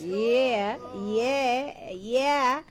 yeah yeah yeah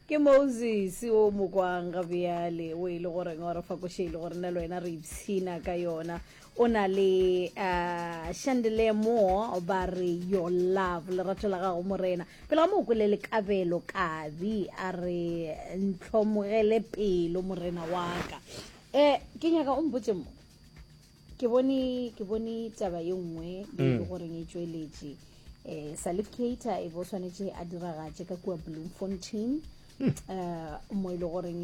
ke moses o mo kwang ga bjale o e le goreng wa re fakoše e le gore nna le wena re ipshina ka yona o na le uh, shandele mo ba re your love lerato la gago morena pele ga mo o kwele lekabelo kabi a re ntlhomogele pelo morena wa ka um ke nyaka o mpotse mo ke bone ke bone taba ye nngwe e le mm. goreng e tšweletše um salif cater e bo tshwanetse a diragatše ka kua bloemfontein um mo e le goreng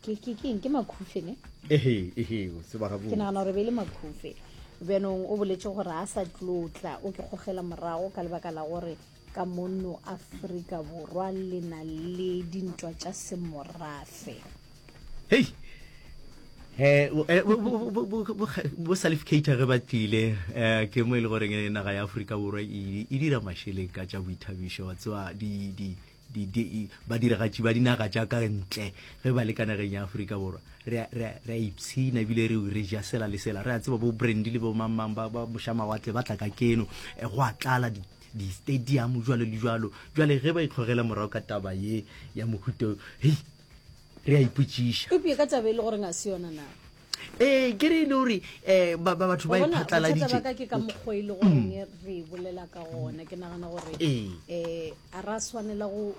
keng ke makhufe ne ke nagana gore be e le makhufe bjanong o boletse gore a sa tlotla o ke gogela morago ka lebaka la gore Ka mono Afrika Borwa le na le dintwa tša semorafe. Hei! Eh, eh, bo salificator ge ba tlile eh, ke mo e le goreng eh, naga ya aforika borwa e, e dira mašeleng ka tša boithabišo wa tsewa badiragatši ba dinaga tša ka ntle ge ba le ka nageng ya aforika borwa re a ipshina ebile re re ja sela le sela re a tseba bo brandy le bo mangmang ba mošamawatle ba tla ka keno go a tlala distadiamo jalo le jalo jale ge ba itlhogela morago ka taba ye ya mohuto hei re a ipotšiša epie ka taba e le gore ga se yona na ee ke re e le gore um batho ba iphatlaladitšebaka ke ka mokgwa e le gore mm. re e bolela ka gona ke nagana gore um a ra swanela go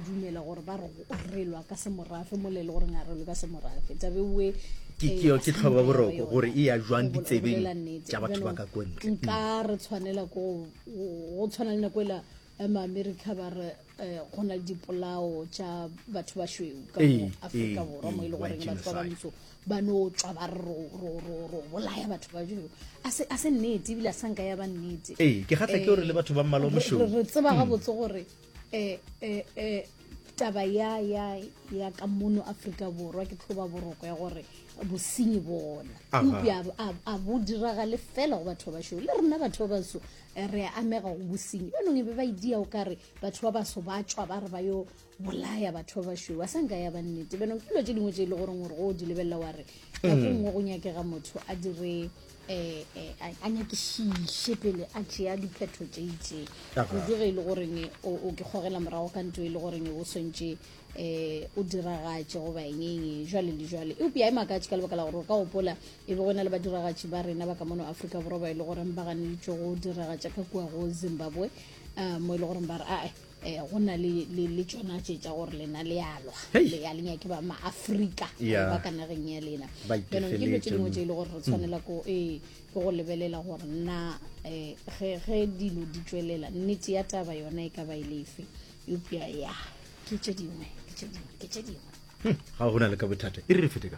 dumela gore ba re re lwa ka semorafe mo le le gore ngare lwe ka semorafe tabe we ke eh, keo ke tlhoba boroko gore e ya jwang ditsebeng tša batho ba ka kontle nka mm. re tshwanela ko go tshwana le nako ela eh, maamerika ba re eh, go na le dipolao tša batho ba šweu ka aforika borwa mo e le goreng batho ba bantso ba no tswa ba re ro bolaya batho ba šweu a se nnete ebile a sanka ya ba nnete ee ke gatla ke gore le batho ba mmalo mošweu re tseba gabotse mm. gore e e e taba ya ya ya ka mono afrika borwa ke tlhoba boroko ya gore bosenyi bona epe a bo diragale fela go batho ba basho le rena batho ba baso eh, re amega go bosenyi banong e be ba idia o kare batho ba baso ba tswa ba re ba yo bolaya batho ba basho ba sanka ya bannete banong ke dilo tse dingwe tse e le goreng gore go di lebelela wa re nako mm. nngwe go nyakega motho a dire a nyakišiše pele a tšea diphetho tše itše kudu ge e le goreng o ke kgogela morago ka nto e le goreng o swantše um o diragatše goba engeng jwale le jwale eupša a e makatše ka lebaka la gore o ka gopola e be go na le badiragatši ba rena ba ka mono aforika borwa ba e le goreng ba ganeditšwe go diragatša ka kua go zimbabwe um mo e le goreng ba re ae Eh, go na le le le tsona tše tša gore lena le a lwa Hei. le ya le nyake ba maaforika Yeah. ba ka nageng ya lena Ba jaanong ke dilo tše dingwe itefeletše. tše e le gore re tshwanela ko ee ke go lebelela gore nna um ge ge dilo di tswelela nnete ya taba yona e ka ba e lefe eupša ya ke tše dingwe ke tše dingwe ke tše dingwe ga gona le ka bothata e re re fete ka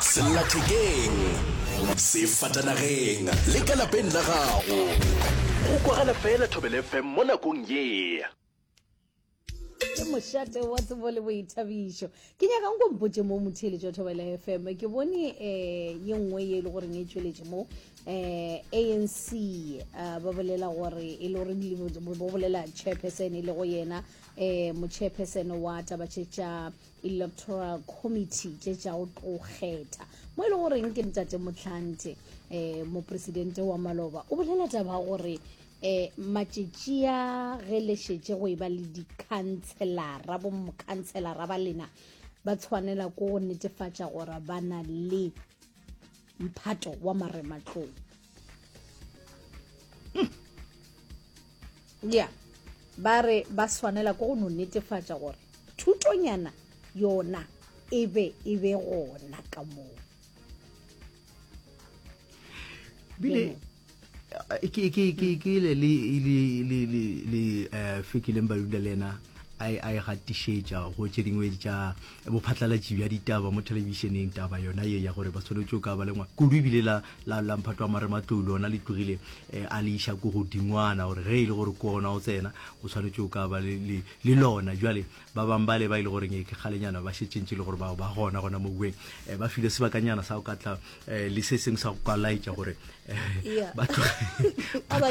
sellathekeng sefatanageng le ka lapeng la gago go kwagala fela thobele fm mo nakong ye ke mošate wa tsebo le boithabišo ke nyaka nko mpotse mo motheeletši wa thobela fm ke bone um ye nngwe ye e le goreng e tšweletše mo um anc um ba bolela gore e le gore ba bolela chairperson e le go yena um mochairperson wa tabatše tša electoral committee tše tša go tlo kgetha mo e le goreng ke ntate motlhante um eh, mopresidente wa maloba o bolela taba gore eh matšetši a ge le šetše go e ba le dikhantshelara bomokhantshelara ba lena ba tshwanela ko go netefatša gore ba na le mphato wa marematlou mm. ya ba re ba swanela ko go no netefatša gore thutonyana yona e be e be gona ka moo bile ke ke ke ke le le le le le le eh, fekileng ba dula le ena a e, a e gatišetša go tše dingwe tša bophatlalatši bja ditaba mo thelebišeneng taba yona ye ya gore ba tshwanetse o ka ba lengwa kudu ebile la la la mphatwa mare matlolo ona le tlogile eh, a le iša ko godingwana gore ge e le gore ko ona o tsena o tshwanetse o ka ba le le- le lona jale ba bang bale ba ile gore ngeke kgalenyana ba šetšentše le gore bao ba gona gona mo bueng eh, ba file sebakanyana sa go ka tla eh, le se sengwe sa go ka laetša gore eh, ba tshwanetse ba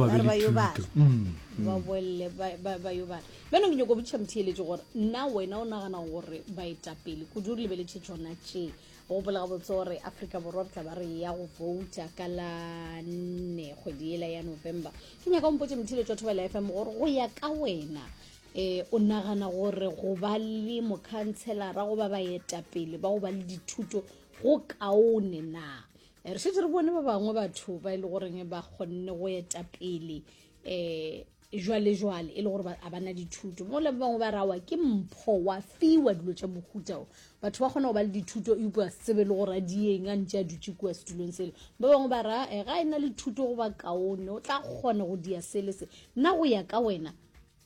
be le thuto mm, ba mm. bolele ba yo bana bjano ke nyoko botšha motheeletše gore nna wena o nagana gore baetapele kudu re lebeletse tsona tše gopola gabotse gore africa borwa re tla ba re ya go vouta ka la nne kgwedi ela ya november ke nyaka ompotse methile tswa thobela f m gore go ya ka wena um o nagana gore go ba le mokhantshelara goba baetapele ba go ba le dithuto go kaone na eh, re šetse re bone ba bangwe batho ba e le goreng ba kgonne go etapele um eh, jwalejwale e le gore a bana dithuto mo le ba bangwe ba rawa ke mpho wa fiwa dilo tša mohuta o batho ba kgona go ba le dithuto e upwa sebe le gore a dieng a ntse a dutse kua setulong sele ba bangwe ba ra e eh, ga e na le thuto go ba kaone o tla kgona go dia sele se nna go ya ka wena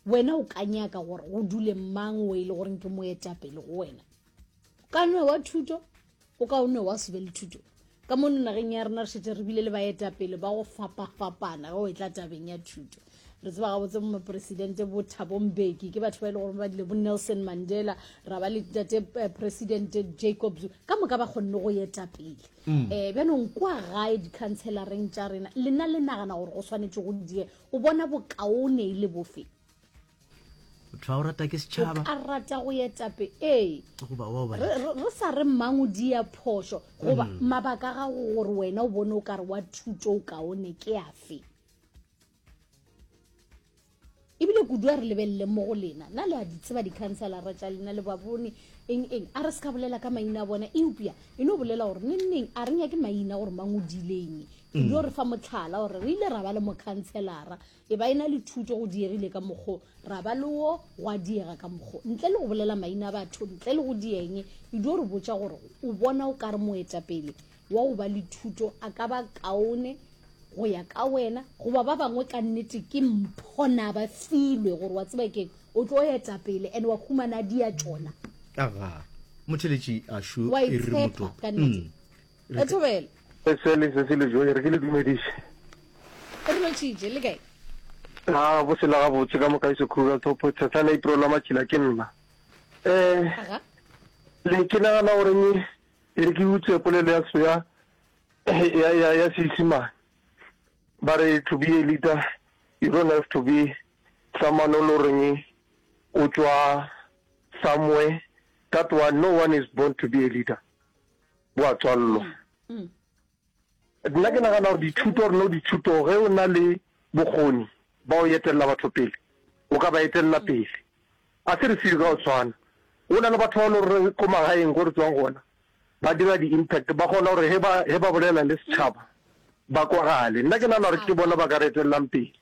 wena o ka nyaka gore go dule mang o e le goreng ke moetapele go wena ka nwe wa thuto o ka o ne wa sube le thuto ka mono nageng ya rena re šetse re bile le baetapele ba go fapafapana ge o e tla tabeng ya thuto re tseba gabotse bo moporesidente bo thabombeki ke batho ba e le gore ba dile bo nelson mandela ra ba le tate eh, presidente jacob zu ka moka ba kgonne go etapele um mm. eh, bjanong kwa gae dikhantshelareng tša rena lena le nagana gore go tshwanetse go die o bona bokaone e le bofe tlhwa o rata ke setšhaba o ka rata go etape ee re sa re mmango di ya phoso goba mm. mabaka ga go gore wena o bone o ka re wa thuto o kaone ke afe ebile kudu a re lebelele mo go lena na le a di tseba dikhanselara tša lena le ba bone eng eng a re se ka bolela ka maina a bona eupša e no bolela gore nengneng a re nyake maina gore mang o dileng kudu mm. re fa motlhala gore re ile ra ba le mokhanselara E ba e na le thuto go diegile ka mokgo, ra ba le wo gwa diega ka mokgo. Ntle le go bolela maina a batho, ntle le go dieng, e dio re botša gore o bona o ka re moetapele wa go ba le thuto a ka ba kaone go ya ka wena goba ba bangwe. Ka nnete ke mpho na ba filwe gore wa tseba keng o tlo etapele and wa humana dia tšona. Aga motheletši a šu e re moto. Ka nnete. Mm. Re thobele. Sele se se le joe re ke le dumediše. Re lotšitše le kae? Ga bo se la ga botse ka moka iso khuga thopo tshasa na ipro la matšhila ke nna. Eh. Aga. Le ke na na gore ni e re ke utse polelo ya soya ya ya ya sisima. Ba re to be a leader you don't have to be someone o lo reng o tswa somewhere that one no one is born to be a leader. bo a tswallwa nna ke nagana gore dithuto reno dithuto ge o na le bokgoni ba o etelela batho pele o ka ba etelela pele a se re seo ka o tshwana o na le batho ba le gore ko magaeng go re tswang gona ba dira di-impact ba kgona gore he ba he ba bolela le setšhaba ba kwagale nna ke nagana gore ke bona ba ka re etelelang pele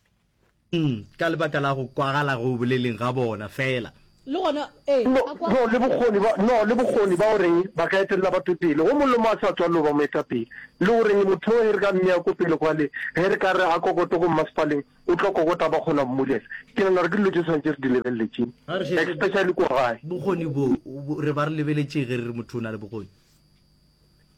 Hm, ka lebaka la go kwagala go boleleng ga bona fela. Le gona, ee, No, a kwagala. no, le bokgoni ba, no, le bokgoni ba go reng ba ka etelela batho pele, go mollo mo a sa tswalelo ba moetapele. Le go reng motho o he re ka mmea ko pele kwale, he re ka re a kokote ko mmasepaleng, o tlo kokota ba kgona mmulela. Ke nagana gore ke dilo tše swantše re di lebelele tše, Ga re šetše especially kwa gae. bokgoni bo, bo, re ba re lebeletšeng ge re re motho o na le bokgoni?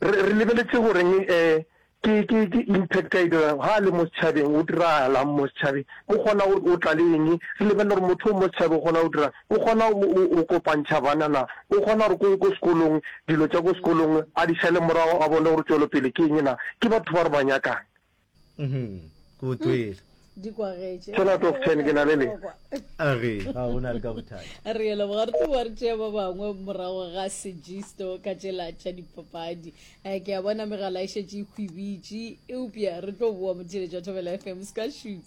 Re, re lebeletše go reng, eh, Ke, ke, ke impact a e dirago ha a le mo setšhabeng, o diragalang mo setšhabeng, o kgona go o tla le eng, re lebelela gore motho o mo setšhabeng o kgona go dirang, o kgona o, o kopantšha bana na, o kgona gore ko, ko sekolong dilo tša ko sekolong a di šale morago a bone gore tšwelopele ke eng na, ke batho ba re ba nyakang. Uhmm, ke utlwile. Tshela top 10 ke na le le. A re ga o na le ka bothata. Re yela bogare tu wa re tšea ba bangwe morago ga sejisto ka tšela tša dipapadi. Eh, ke a bona megala e šetše e khwibitše. Eupša re tlo boa motheletšo wa Thobela FM. Se ka shoot.